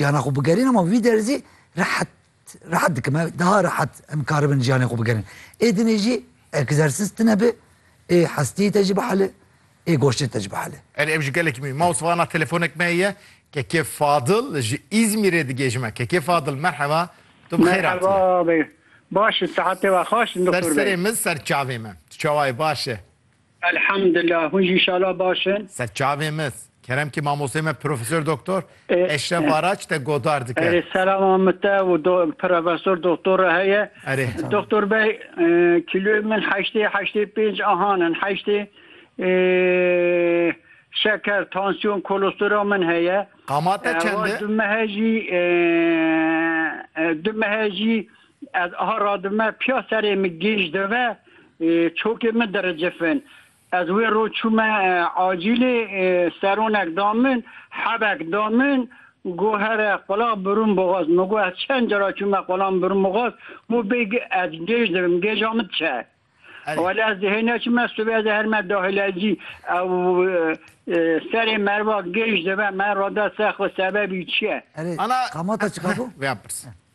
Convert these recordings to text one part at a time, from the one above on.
Jiyanê xwe bigerîn ama vî derzî rehet rehet dikim ev daha rehet em karibin jiyanê xwe bigerin. Ê dinê jî egzersiz tine bi ê hestiyê te jî bihele ê goştê te jî bihele. Erê ev ji gelekî mî. Maws vana telefonek me ye KK Fadil ji Îzmîrê digê ji me. KK Fadil merheba tu bi xêr hatî. Merheba baş in sehetê we xweş in doktor bey. Ser serê min ser çavê me tu çawa yî baş e. Elhamdullah hûn jî inşallah baş in. Ser çavên me kerem kî mamosteyê me Profesor Doktor Eşref Araç te godar dike. Erê selama min te û Profesor Doktor re heye. Erê. Doktor bey kîloyê min heştê heştê pênc ahan in heştê şeker, tansiyon, kolestera min heye. Qama te çend e? Du mehe jî du mehe jî Ez aha radime piya serê min gêj deve çokê min diricifin. Ez wê roj çûme acîlê seronek da min, hebek da min, got here qula birûm boxaz. Min got ez çend cara çûme qulan birûm boxaz, got bê ez gêj divim, gêja min çi ye? Wele ez dihê neçime sibê ez ê her me dahilelcî ew serê merva gêj dive me rada ser xwe sebebî çi ye? Erê, Ana- qamata çi qabo? Vê ya pirs.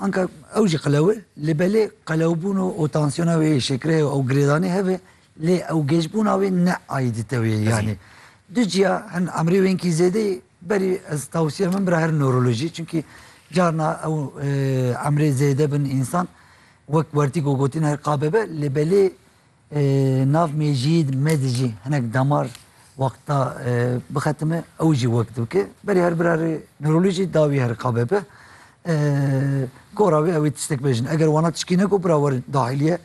Anka ew jî qelew e, lê belê qelewbûn û û tansiyona wê yê şekerê û girêdanê hev e, lê ew gêjbûna wê ne aîdîte wê ye. Yanî du ciya hin emrê wênkî zêdeyê berî ez tewsiya min bira her newrolojî çunkî carna ew emrê zêde bin însan wek wertîgo gotin her qabe be lê belê Nav Mecîd me di jî hinek damar wexta bixetime ew jî wek dibike. Berê her birarê nirolî jî dawî her qabe be. Gora wê ewê tiştek bejin. Eger wana tişkî neko bira wer dahilîye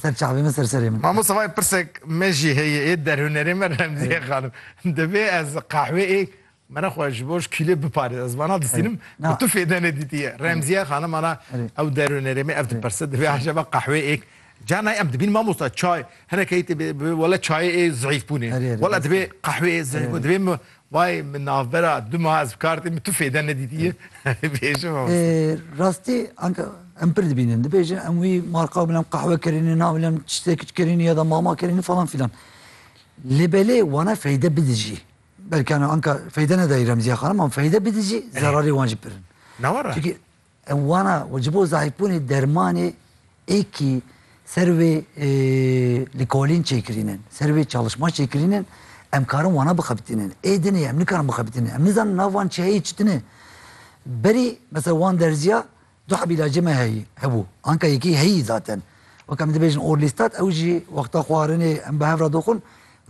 ser çavê min ser serê min. Mamosta vay pirsek me jî heye ê derhunerê me Remzîye xanim. Divê ez qehwê ê Mera xwe ji bo ji kîlê biparêz. Ez vana distînim ku tu fêde nedîtiye. Remziye xanim ana ew derûnerê me ev diperse divê acaba qehwê êk Ca nayê em dibînin mamosta çay hinekê yê tê bê bi wele çayê ê zehîf bûnê. Wela divê qehwê ê zehîf bû divê min vayê min navbera du meha ez bi kar tê min tu fêde nedîtiye bêje mamosta. Rastî anka em pir dibînin dibêje em wî marka bila em qehwe kirîne nabila em tiştekî kirîne ya da mama kirîne falan filan. Lê belê wana feyde bidijî. Belkî ana anka feyde nedayî Remzîya xanim an feyde bidî jî zerarê wan jî pir in. Ne were? Çunkî ew wana û ji bo zayîfbûnê dermanê êkî ser wê li kolîn çêkirînin, ser wê çalişma çêkirînin em karin wana bixebitînin. Ê dinê em nikarin bixebitînin. Em nizanin nav van çiyayê çi din e. Berî mesela wan derzîya Du hebîla cî me heyî hebû. Anka yekî heyî zaten. Weke em dibêjin orlîstat ew jî wexta xwarinê em bi hev re doxin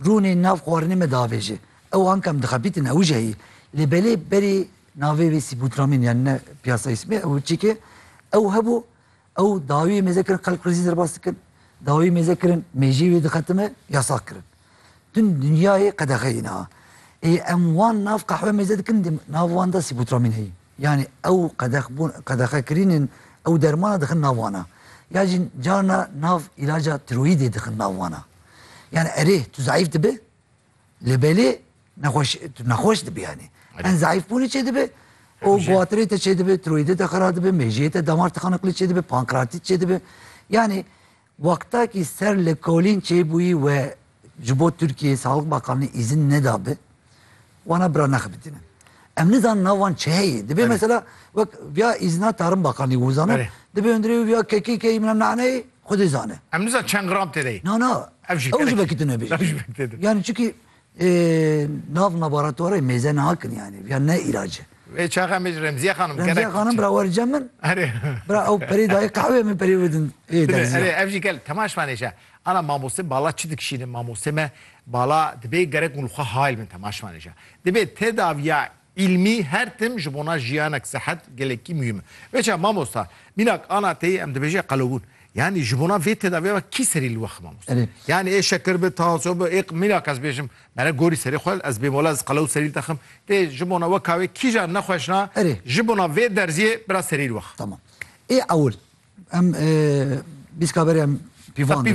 rûnê nav xwarinê me diavêjê. Ew anka em dixebîtin ew jî heyî. Lê belê berî navê wî Sîbûtramîn yanî ne piyasa îsmê ew çîkê ew hebû ew dawiyê mêze kirin xelk rizî derbas dikin. Dawiyê mêze kirin mêjî wî dixetime yasax kirin. Din dinyayê qedexeyê niha. Ê em wan nav qehwe mêze dikin dê nav wan de Sîbûtramîn heyî. Yanî ew qedexbûn qedexekirînên ew dermana dixin nav wan a. Ya jî carna nav îlaca tiroyîdê dixin nav wan a. Yanî erê tu zeîf dibe lê belê nexweş tu nexweş dibî yanî. Hin zeîfbûnê çê dibe û guwatirê te çê dibe, tiroyîdê te xira dibe, mêjiyê te damar tixaniqlê çê dibe, pankreatît çê dibe. Yanî Wextekî ser li kolîn çêbûyî we ji bo Tirkiyeyê Saxlîk Bakanlî îzin nedabi wana bira nexebitînin. Em nizanin nav wan çi heye. Dibê mesela wek viya îzina Tarim Bakanlî wizano, dibê hundirê wî viya KKK'yê mîna Naneyê xwedê zane. Em nizanin çend gram têde ye. Na na. Ew jî vekî tune bê. Ew jî vekî têde. Yanî çikî Ê nav laboratwarê mêze nakin yanî viya ne îlac e. Vê çaxa me ji Remziye xanim gerek. Remziye xanim bira wer cem min. Erê. Bira ew perê dayê qehweyê min perê bidin ê derziya. Erê ev jî gel tema şivan êşe. Ana mamoste bala çi dikişînin? Mamoste me bala dibê gerek hûn li xwe hayl bin tema şivan êşe. Dibê tedaviya Îlmî her tim ji bona jiyanek, sihet gelekî muhîm e. Veça mamosta, mînak ana teyê em dibêje qelewbûn. Yanî ji bona vê tedaviyê ve kî serî li we xwe mamosta? Yanî ê şekir bi, tansiyon bi, ê mînak ez bêjim mere gorî serê xwe, ez bêm wela ez qelew serî dixim. Tê ji bona we ka wê kîjan nexweşna ji bona vê derziyê biraz serî li we xwe. Tamam. Ê ewil em bîst kaberê em pîvandin.